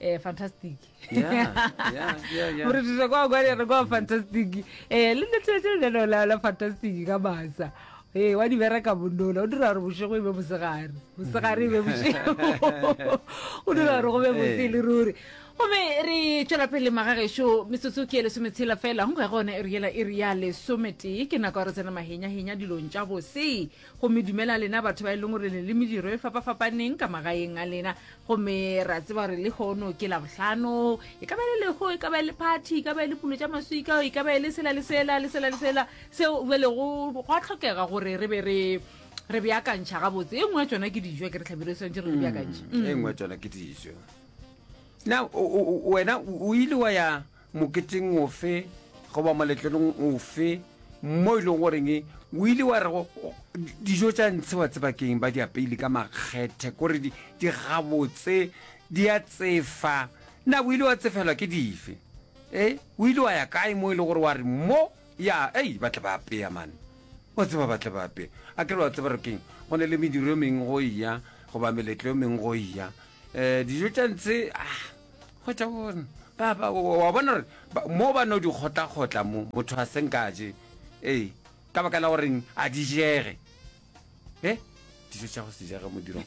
eh fantastic Yeah, yeah, yeah, yeah. gore tuse kwa kwa re kwa fantastic eh le letshetse le no la la fantastic ka masa eh wa di bereka bondola o dira gore bošego e be mosegare mosegare e be bošego o dira gore go be botse le ruri gomme re tšwela pele magagešo metsotso ke e lesometshela fela go ga gone e re yela e re ya lesometee ke nako ya re tsena mahenyahenya dilong tša bose gomme dumela lena batho ba e leng gore le le mediro e fapafapaneng ka magaeng a lena gomme ra tseba gore le kgono ke labohlano e ka ba le lego e ka ba le party e ka ba le pulo tša maswika e ka ba le sela le sela le sela le sela seo be lego gwa tlhokega gore re be re re beakantšha gabotse e nngwe ya tsona ke dijo ke re tlhabile swantse re di beakantšhe e nngwe ya tsona ke dijo now wena o ile wa ya moketeng ofe goba moletlelong ofe mo e leng goreng o ile wa re go- go- dijo tša ntshe wa tseba keng ba di apeile ka makgethe kore di di gabotse di a tsefa na o ile wa tsefelwa ke dife e o ile wa ya kae mo e le gore wa re mo ya ei ba tle ba apeya mane wa tseba ba tle ba apeya a kere wa tseba re keng go ne le mediro e mengwe go eya goba meletlo e mengwe go eya um dijo tša ntshe ah, Hwetša bona, ba, ba, wa wa bona gore ba- mo ba no di kgotlakgotla mo, motho a senka a je, ee, ka baka la goreng a di jege. E, dijo tša go se jege modirong.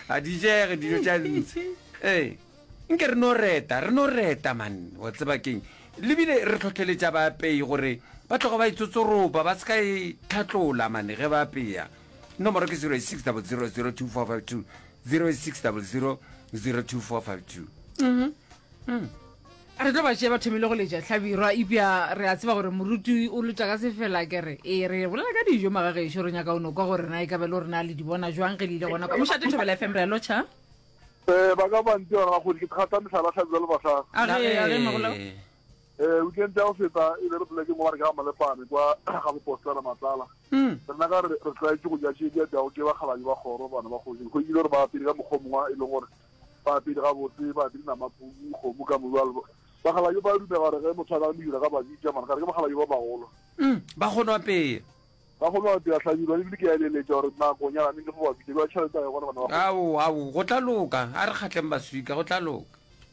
a di jege dijo tša ntshe. Ee, nke re no reta, re no reta man, wa tseba keng. Lebile re tlhotlheletša baapei gore ba tloga ba itsotsoropa, ba se ka e tlhatlola mane ge ba apeya. Nomoro ke 0600024520 0600024520. Re tlo ba tšea ba thomile go letša hlabirwa ipja re a tseba gore moruti o lotša ka sefela kere ee re bolela ka dijo magagešo re nyaka o no kwa gore na e ka be le gore na le di bona jwang ge le ile gona kwa mošate thobela fm re a lotšha um ba ka bantsi ba gago ke thata mehlala hlabirwa le basadi a ge a ge magola Eh, weekend ya go feta e be re polekeng mo ba re ke ga Malepane kwa ga bopostela Matlala. Rena ka re re tlaetše go ja tše di apeago ke bakgalabje ba kgoro, bana ba kgoši. Re hwedile gore ba apere ka mokgwa o mongwe e leng gore ba apere gabotse, ba apere namapuku, kgomo ka modu. Bjalo bakgalabje ba dumela gore ge motho a ka medira ka ba bitša, mara ka re ke bakgalabje ba bagolo. Ba kgono apea. Ba kgono apea hlabirwa le bile ke a eleletša gore nako nyana ne le fo ba bitša bja tšhelete a yona bana ba kgoši. Ao, ao, go tla loka. A re kgatleng baswika, go tla loka.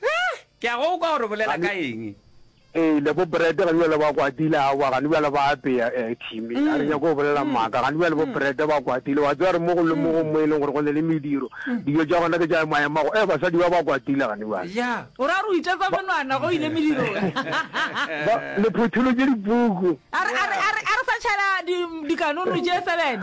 Hee! Ke a go kwa gore o bolela ka eng. Ee, le bo Brett gane bjale ba kwatile, aowa, gane bjale ba apea, ee, Timmy, ga re nyake go bolela maaka, gane bjale bo Brett ba kwatile, wa tseba re mo go le mogong mo e leng gore go ne le mediro, dijo tša gona ke tša emaemago, ee, basadi ba ba kwatile gane bjale. Ja. O ra gore o itetsa menwana ge o ile medirong. Ba, le photholotše dipuku. A re, a re, a re, a re sa tšhaela di, dikanono tše sebene.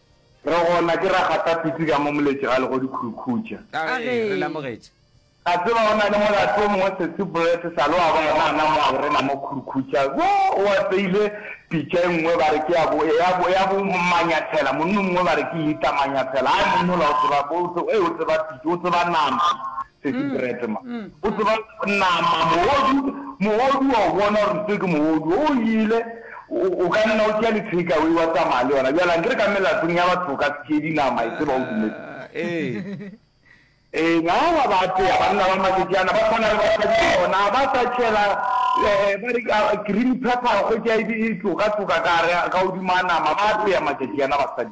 Re gona, ke ra gata pitsi ka mo moletše ga legodu Khurukhucha. Ka ge re lamogetše. Ka tseba go na le molato o mongwe Sesi Brett sa le wa bona a na mo a o rena mo Khurukhucha. Wo o apeile pitša e nngwe ba re ke ya bo, ya bo, ya bo Manyathela. Monna o mongwe ba re ke Lita Manyathela. Hai monna ola o tseba, o tseba, ee, o tseba pitša, o tseba nama. Sesi Brett ma. O tseba nama mohodu, mohodu wa o bona gore se ke mohodu. O ile, o ka nna o tšea le takeaway wa tsamaya le yona. Bjale a nkere ka melatong ya batho o ka se tšee dinama, e tseba o dumetse. Ee. Eng, aowa ba apeya, banna ba Matsotšana ba tshwana le basadi ba bona, ga ba sa tšhela ba re green pepper, kgwetša e tloka-tloka ka gare, ka godimo ga nama, ba apeya Matsotšana basadi.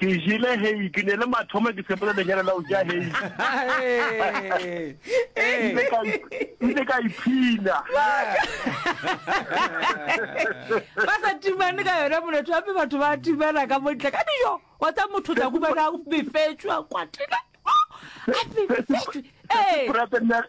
Ke jele hei, ke ne le mathomo ke sepele lenyalo la go ja hei. Ile ka ile ka iphina. ba sa timane ka yona moletho gape batho ba timana ka montle ka dijo wa tsa motho tla kumana a befetswe a kwatile a befetswe ee Brother Nel-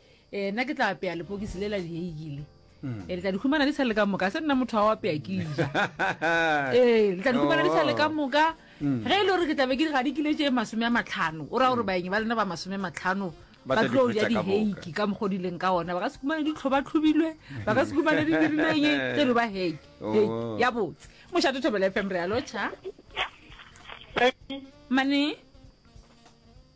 Eh, nna ke tla apeya lepokisi le la dieiki le hmm. eh, le tla di humana di sa le ka moka se nna motho a o apeya ke ja ee eh, le tla di humana di sa le ka oh. moka hmm. ge e le gore ke tlabe ke ga di kile tše masome a matlhano o raya gore hmm. baeng ba lena ba masome matlhano ba tlo ja diheiki ka mokgwa dileng ka ona ba ka se kumane ditlho ba tlhobilwe ba ka se kumane di dirileng tse lo ba heiki oh. ya botse mošate thobela fm re ya locha mane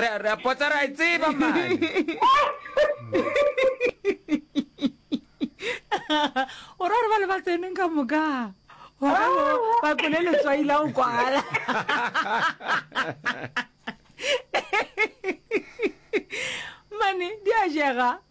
re re a potsa ra e tseba mane o ra re ba le ba tseneng ka moka wa ka bo ba kole letswai la go kwala mane di a jega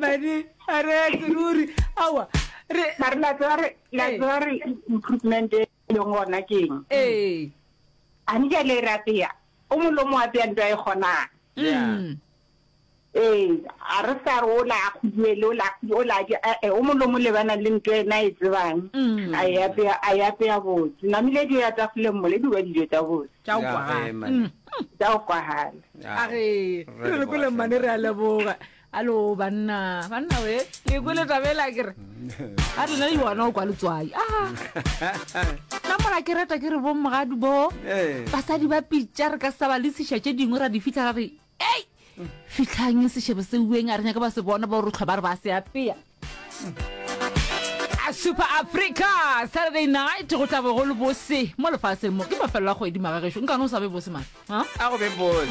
mane a re seruri awa re mare la tseba re la Ee. tseba re improvement e leng gona ke eng ee a ni jale re apeya o molomo wa peya nto a e kgonang Yeah. Mm. ee a re sa re o la a kguduele o la o la je ee o molomo le bana le nto ena e tsebang Mm. a e apeya a e apeya botse namile dijo ya tafoleng mole di ba dijo tsa botse tša go kwagala tša go kwagala a re re re kole mmane re a leboga alo banna banna we ke kwele tabela kere a rena le yona o kwa letswai a nna mola ke reta ke re bomogadi bo basadi ba pitša re ka sa ba le sešwa tše dingwe ra di fitlha ra re Ei! Fitlhang sešebo se ueng a re nyaka ba se bona ba o re tlhwa ba re ba se apea. A Super Africa Saturday night go tla bo go le bose mo lefatsheng mo ke mafelelo a kgwedi magagešo nkane o sa be bose mane a go be bose